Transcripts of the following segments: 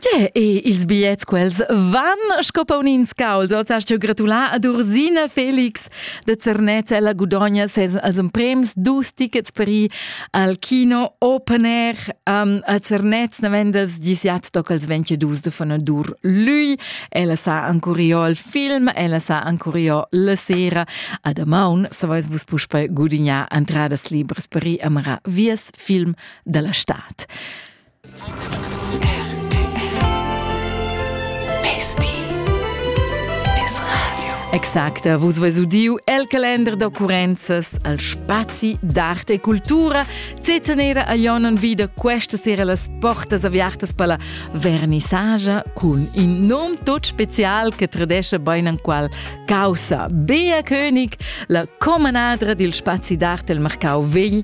Tge e ils bigliets quels van sco paunins caus. Oz hast teu gratulà ad Ursina Felix de Zernez. Ella gudogna ses als prems dus tickets per ir al Kino Open Air um, a Zernez. Naven dels disiat toc als 22 de Fanadur lui. Ella sa ancuriò il film, ella sa ancuriò la sera. Ad Amaun, sa vais vus puspei gudignar entradas libres per ir a marar vies film dalla stad. Exacta, vus veis udiu el calender d'occurrenzas al spazi d'arte e cultura. Zezenera a Ionon vida questa sera las portas aviartas per la vernissagia cun in nom tot special che tradesce bein an qual causa. Bea König, la comanadra dil spazi d'arte el Marcau Vegl,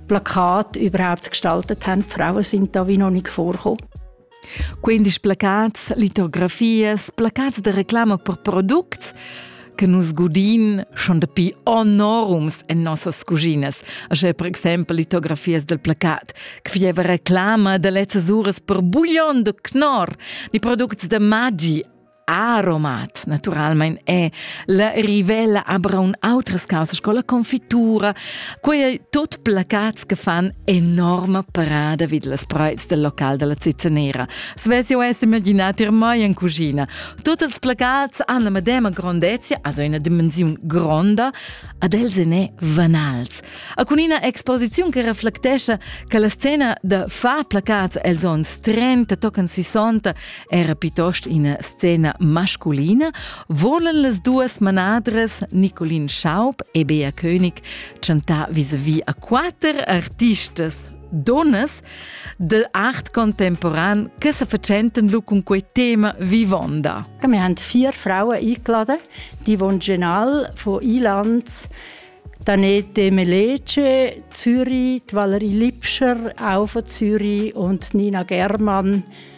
Plakat überhaupt gestaltet haben. Die Frauen sind da wie noch nicht vorgekommen. Quindi placats, litografias, placats de reclama per products che nus godin schon dapi enorums en nossas cuginas. Așa per exempel litografias del placat, che fieva reclama de lezzas uras per buglion de knor, ni products de magi aromat naturalmein è la rivella abra un outras causa sco la confitura quei ei tot placats che fan enorma parada vid las preits del local della cizzanera svess io es imaginat ir mai in cucina tot els placats han la medema grandezia also una dimensiun gronda ad els en è vanals a cun ina exposiziun che reflectescha che la scena da fa placats els ons 30 tocan 60 Era piuttost ina scena masculina volan las duas manadras Nicolin Schaub e Bea König chantar vis-à-vis a quatter artistas donnas de art contemporan che se facenten lu cun quei tema vivonda. Wir haben vier Frauen eingeladen, die wohnen genau von Ilanz Danette Melece, Zürich, Valerie Lipscher, auch von Zürich und Nina Germann,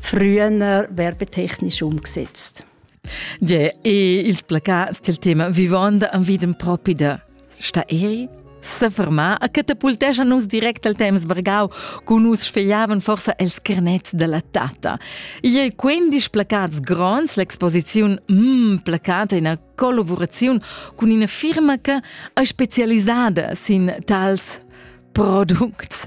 früher werbetechnisch umgesetzt. Ja, il placat del tema vivond am videm propi da sta eri sa fermar a catapultescha nus direct al temps Bargau, cu nus sfegliavan forsa els carnets della tata. Ie quindisch placats grons, l'exposiziun mm placata in collaborazion cun ina firma che è specializzata sin tals products.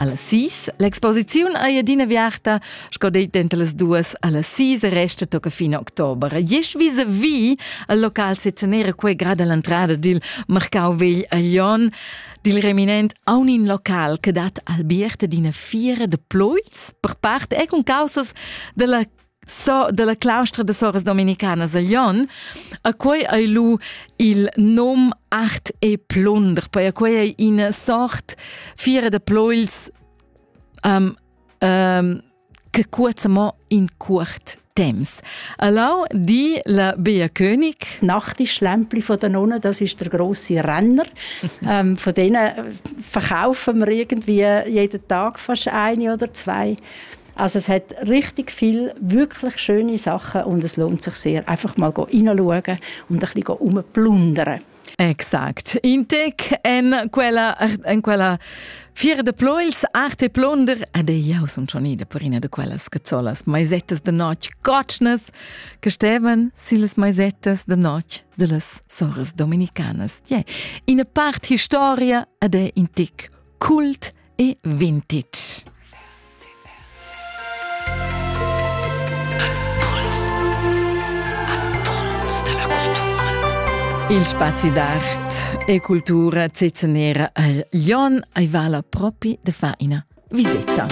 Alla sis, l'exposiziun ei adina viarta, sco dei denter las duas, alla sis resta tocca fin october. Jes vis vi al local sezanera quei grad all'entrada dil marcau vegl a Jon, dil reminent a un in local che dat albiert d'ina fiera de ploils, per part e con causas della so dalla claustra de soras dominicanas a Lyon, a quei ei lu il nom Art e Plunder, poi a quei ei ina sort fiera de ploils um, um, che cuoza mo in cuort Temps. Allau die la Bea König. Nachtisch Lämpli von den Nonnen, das ist der große Renner. ähm, von denen verkaufen wir irgendwie jeden Tag fast eine oder zwei. Also es hat richtig viel wirklich schöne Sachen und es lohnt sich sehr, einfach mal hineinschauen und ein bisschen rumplundern. Exakt. In tec en quella, en quella fiera de ploils, arte plunder, ed eu sun schon ida per ina de quellas cazzolas maisettas de notg gotschnas, che stevan sillas maisettas de notg de las soras dominicanas. Yeah. Ina part historia ed è in tic kult e vintage. Il spazi d'art e cultura zezenera a Lyon ei vala propi de faina viseta.